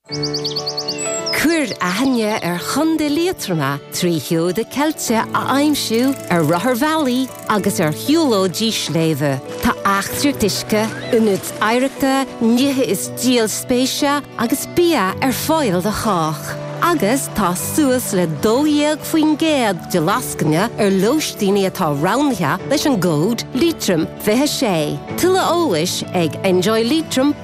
Cuir aithne ar Chontae Liatroma trí sheoda ceilte a aimsiú ar rotharbhealaí agus ar shiúlóidí sléibhe. Tá eachtraí uisce, ionaid oidhreachta, nithe is díol spéise agus bia ar fáil do chách, agus tá suas le 12% de lascaine ar lóistíní atá roghnaithe leis an gcód Leitrim 26. Tuilleadh eolais ag enjoyleitrim.ie.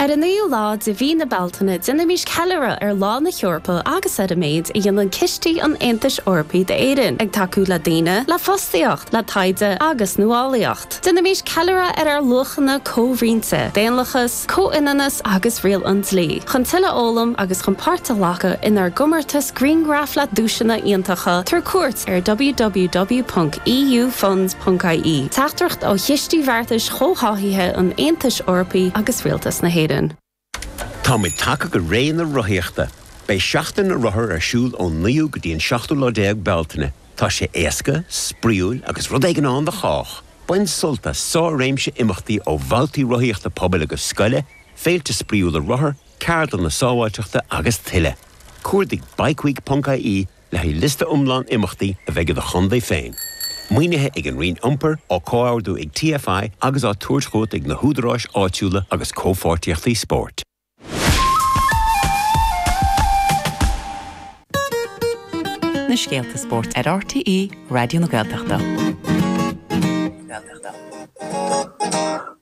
Ar an 9ú lá de mhí na Bealtaine déanaimis ceiliúradh ar Lá na hEorpa agus ar an méid a dhéanann cistí an Aontais Eorpaigh d'Éirinn, ag tacú le daoine, le fostaíocht, le taighde agus nuálaíocht. Déanaimis ceiliúradh ar ár luachanna comhroinnte, daonlathas, comhionannas agus riail an dlí, chun tuilleadh a fhoghlaim agus chun páirt a ghlacadh inár gcomórtas Grianghraf le duaiseanna iontacha tabhair cuairt ar www.eufunds.ie Teachtaireacht ó Chistí Bheartais Chomhtháthaithe an Aontais Eorpaigh agus Rialtas na hÉireann. Táimid tagtha go ré na rothaíochta! Beidh Seachtain na Rothar ar siúl ón 9ú go dtí an 7ú lá déag Bealtaine. Tá sé éasca, spraíúil agus rud éigin ann do chách! Bain sult as sár-réimse imeachtaí ó bhabhtaí rothaíochta pobail agus scoile, féilte spraíúla rothar, ceardlanna sábháilteachta agus tuilleadh. Cuardaigh Bikeweek ponc IE le haghaidh liosta iomlán imeachtaí a bheidh i do chontae féin. Maoinithe ag an Roinn Iompair, á comhordú ag TFI agus á tabhairt chugat ag na húdaráis áitiúla agus Comhpháirtíochtaí Spóirt. na scéalta spóirt ar RTÉ Raidió na Gaeltachta.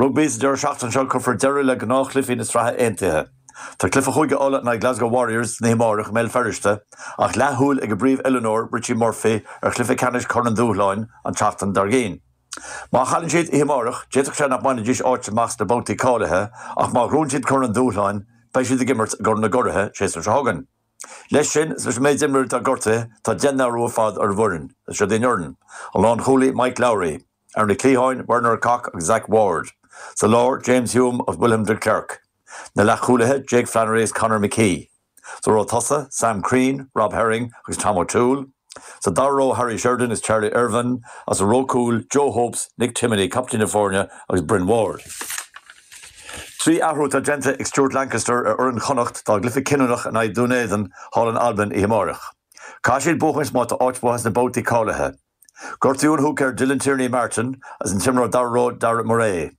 Rugbaí Sa deireadh seachtaine seo cuirfear deireadh le gnáthchluichí na Sraithe Aontaithe. Tá cluiche Chúige Uladh in aghaidh Glasgow Warriors san oíche amáireach i mBéal Feirste ach leathshúil ag a bpríomhoiliúnóir Richie Murphy ar chluiche ceannais Chorn an Dúshláin an tseachtain dár gcionn. Má chailleann siad oíche amáireach d'fhéadfadh sé nach mbainfidís áit amach sna babhtaí cáilithe ach má ghnóthaíonn siad Corn an Dúshláin beidh siad ag imirt i gCorn na gCuradh, séasúr seo chugainn. Leis sin, is leis an méid imreoirí atá gortaithe tá deich n-athrú ar fad ar an bhfoireann. Is seo daoibh an fhoireann, an lánchúlaí Mike Lowry, Ar na cliatháin, Werner Kok agus Zach Ward. Sa lár, James Hume agus William de Klerk. Na leathchúlaithe, Jake Flannery agus Conor McKee. Sa ró tosaigh, Sam Crean, Rob Herring agus Tom O'Toole. Sa dara ró, Harry Sheridan agus Charlie Irvine, agus sa ró cúil, Joe Hopes, Nick Timoney, captaen na foirne, agus Bryn Ward. Trí athrú atá déanta ag Stuart Lancaster ar fhoireann Chonnacht dá gcluiche cinniúnach in aghaidh Dhún Éideann thall in Albain oíche amáireach. Caithfidh siad buachaint má tá áit uathu sna babhtaí cáilithe. Gortaíodh an húicéir Dylan Tierney Martin agus an t-imreoir dara ró Darragh Murray.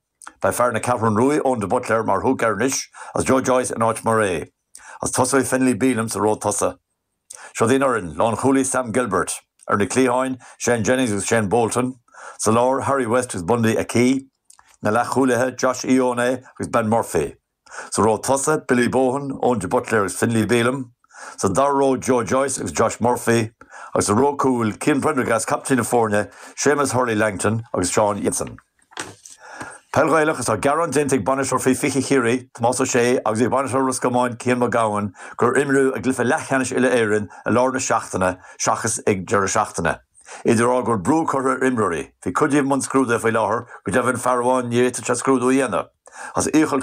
Beidh fear na Ceathrún Rua Eoin de Buitléar mar húicéir anois agus Joe Joyce in áit Murray, agus tosóidh Finlay Bealham sa ró tosaigh. Seo daoibh an fhoireann, lánchúlaí Sam Gilbert, ar na cliatháin, Shane Jennings agus Shayne Bolton, sa lár, Harry West agus Bundee Aki, na leathchúlaithe, Josh Ioane agus Ben Murphy. Sa ró tosaigh, Billy Bohan, Eoin de Buitléar agus Finlay Bealham. Sa dara ró, Joe Joyce agus Josh Murphy. Agus sa ró cúil, Cian Prendergast, captaen na foirne, Shamus Hurley Langton agus Seán Jansen. Peil Ghaelach Is tá gearán déanta ag bainisteoir faoi 20 Chiarraí, Tomás Ó Sé, agus ag bainisteoir Ros Comáin, Cian Mac Gabhann, gur imríodh a gcluiche leathcheannais Uile-Éireann i lár na seachtaine seachas ag deireadh seachtaine. Iad ag rá go bhfuil brú curtha ar imreoirí. Bhí cuid díobh i mbun scrúduithe faoi láthair, go deimhin fear amháin ní fhéadfadh sé scrúdú a dhéanamh as iachall.